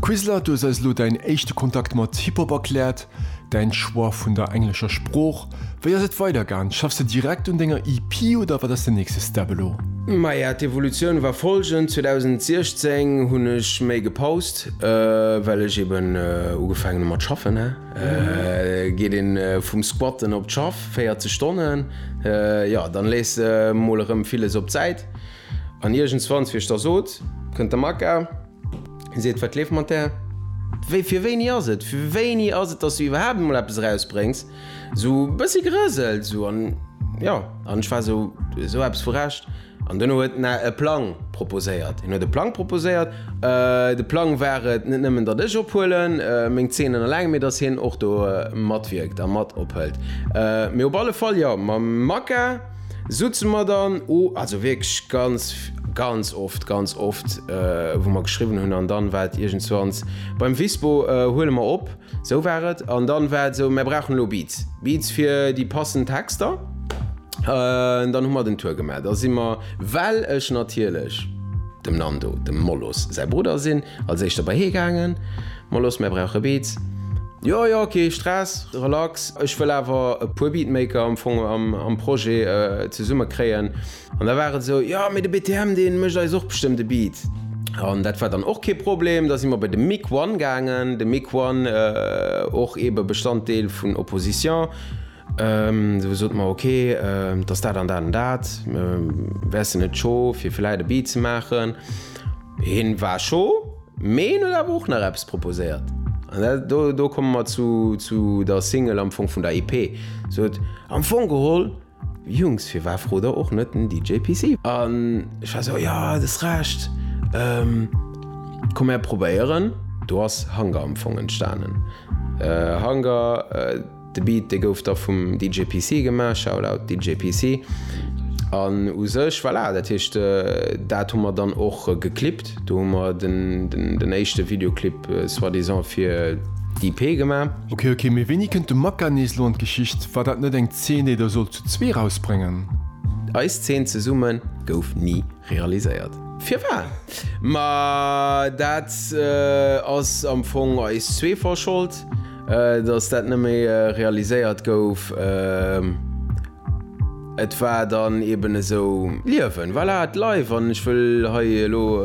Quizler, du hues eis elo däin éischte Kontakt mat Hip-Hop erkläert, däin Choix vun der englescher Sprooch. Wéi ass et weidergaan? Schaffs de direkt un denger EP oder wat ass den nächste Step elo? Maja, d'Evolutioun war folgend, 2016 hunn ech méi gepaust, well ech eben ugefaangen hu mat schaffen. Geet ee vum Squatten op d'Schaff, 40 Stonnen, jo, dann lees de mol erëm villes op d'Säit. An iergendswanns wier ech da sot, kënnt de Makka, seet, Wat leeft mat där? Wéi, fir wéini ass et? Fir wéini ass et, dass du iwwerhaapt emol eppes erausbréngs? Esou e bëssi gerëselt, esou. An jo, an ech war esou, esou eppes vu Recht. An duerno huet en e Plang proposéiert. En huet e Plang proposéiert. De Plang war et, net nëmmen, datt ech ophuelen, meng Zeenen eleng, mee datt hien och do matwierkt a mat ophëlt. Mee op alle Fall, jo, mam Makka. Soutzen mer dann o, also wierklech ganz, ganz oft, ganz oft, wou mer geschriwwen hunn an dann war et iergendswanns, beim Visbo huele mer op, sou war et, an dann war et sou, mer brauchen elo Beats, Beats fir déi passend Texter, dann hu mer den Tour gemaach, da si mer, well ech natierlech dem Nando, dem Molos säi Brudder sinn, als éischter bei hie gaangen. Mol los, mär brauche Beats. Jo, jo, kee Stress, relax. Ech wëll awer e puer Beatmaker am Fong am Projet zesumme kréien. An da war et esou, jo, mee de BTM, dee mécht eis och bestëmmt e Beat. An dat war dann och kee Problem. Da si mer bei de Mick One gaangen. De Mick One, och eebe Bestanddeel vun Opposition. Du sot mer, ok, et ass dat an dat an dat, wäers de net cho fir villäit e Beat ze maachen? Hien war cho, mee hien huet awer och nach eppes proposéiert an dat, do, do komme mer zu, zu der Single am Fong vun der EP. Sot, am Fong geholl, Jungs, firwat frot der och net den DJ PC? An ech war sou, jo, du hues Recht, komm mär probéieren. Do ass Hunger am Fong entstanen. Hunger. De Beat dee gouf da vum DJ PC gemaach, Shoutout DJ PC, an u sech, voilà, dat heescht dat hu mer dann och geclipt. Do hu mer den éischte Videoclip soi-disant fir d'EP gemaach. Ok ok, mee wéini kënnt de Maka nees elo an d'Geschicht? War dat net eng Zeen déi der sollt zu zwee erausbréngen? Eis Zeen zesumme gouf ni realiséiert. Firwat? Ma dat ass am Fong eis zwee verschold. Datt dat net méi realiséiert gouf, et war dann eben esou Liewen, voilà, et leif. An ech wëll hei elo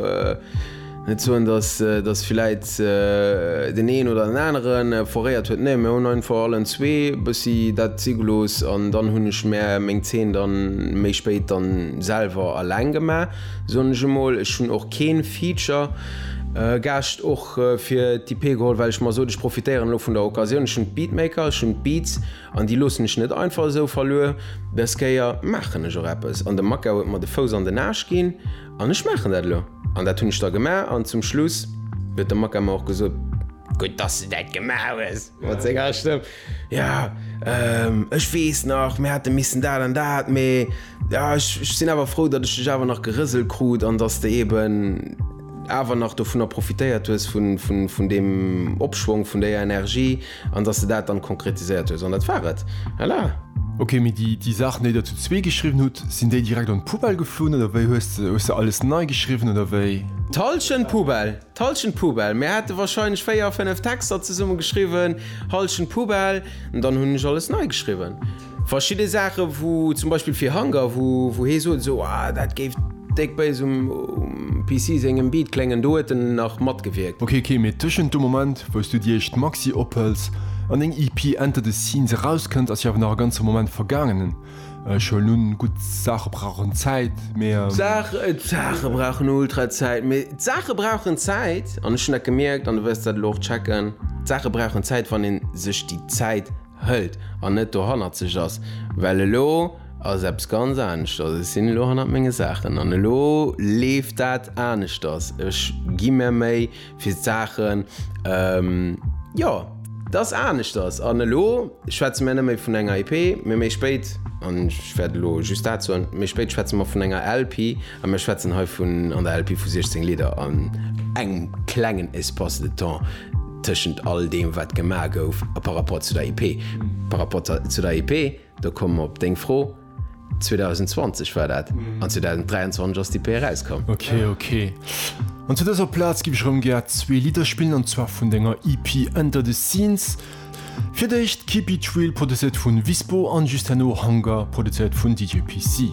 net soen, datt villäit deen een oder deen anere foréiert huet, nee, mir hunn einfach allen zwee e bëssi dat si gelooss an dann hunn ech mär meng Zeen dann méi spéit dann selwer alleng gemaach, soen ech emol. Ech hunn och keen Feature-Gaascht. fir d'EP geholl, well ech mer sot, ech profitéieren elo vun der Occasioun, ech hunn d'Beatmaker, ech hunn d'Beats an déi loossen ech net einfach esou verluer, dës Kéier maachen ech och eppes an de Makau huet mer de Fouss an den Aarsch ginn an ech maachen dat elo an dat hunn ech da gemaach an zum Schluss huet de Makau mer och gesot, gutt dass du dat gemaach hues mat senger Stëmm. Ja, ehm, ech weess nach, mir hate missen dat an dat, mee ja, ech, ech sinn awer frou, datt ech dech awer nach gerëselt krut an datt s de eben awer nach dovunner profitéiert hues, vun, vun, vun deem Opschwong, vun déier Energie an datt s de dat dann konkretiséiert hues. An dat war et. Voilà. Ok, mee déi, déi Saachen, déi Der zu zwee geschriwwen hutt, sinn déi direkt an d'Poubelle geflunn oder wéi? Hues de, hues de alles nei geschriwwen oder wéi? D'Hallschent Poubelle! D'Hallschent Poubelle, mir hate wahrscheinlech 4, 5 Texter zesumme geschriwwen, Hallschent Poubelle, an dann hunn ech alles nei geschriwwen. Verschidde Saache wou zum Beispill fir Hunger, wou hee sot esou, ah dat géif déck béis um PC sengem Beat kléngen, do huet en nach matgewierkt. Ok ok, mee tëschent dem Moment wou s du déi éischt Maxi ophëls an deng EP Enter the Scenes erauskënnt ass jo awer nach e ganze Moment vergaangenen. Ech hunn nun gutt Saache brauchen Zäit, mee. Saach, d'Saache brauchen ultra Zäit, mee. D'Saache brauchen Zäit, an ech hunn dat gemierkt, an du wëlls dat elo och checken, d'Saache brauchen Zäit, wann ee sech déi Zäit hëlt an net dohannerzeg ass, well elo ass eppes ganz aneschters. Ech sinn elo hannert menge Saachen an elo leeft dat aneschters. Ech gi mär Méi, fir d'Saachen, jo, dass aneschters. An elo schwätze mir net méi vun enger EP, mee méi spéit, an ech wäert elo just dat soen, méi spéit schwätze mer vun enger LP a mir schwätzen hei vun, an der LP, vu 16 Lidder an engem klengen Espace de temps tëschent all deem, wat gemaach gouf par rapport zu der EP. Par rapport zu der EP. Da komme mer op deng Fro. 2020 war dat, an 2023 ass d'EP erauskomm. Ok, ok. An zu dëser Plaz giff ech erëm gär zwee Lidder spillen, an zwar vun denger EP Under the Scenes. Fir d'éischt Keep It Real, produzéiert vun Vispo, an just herno Hunger, produzéiert vun DJ PC.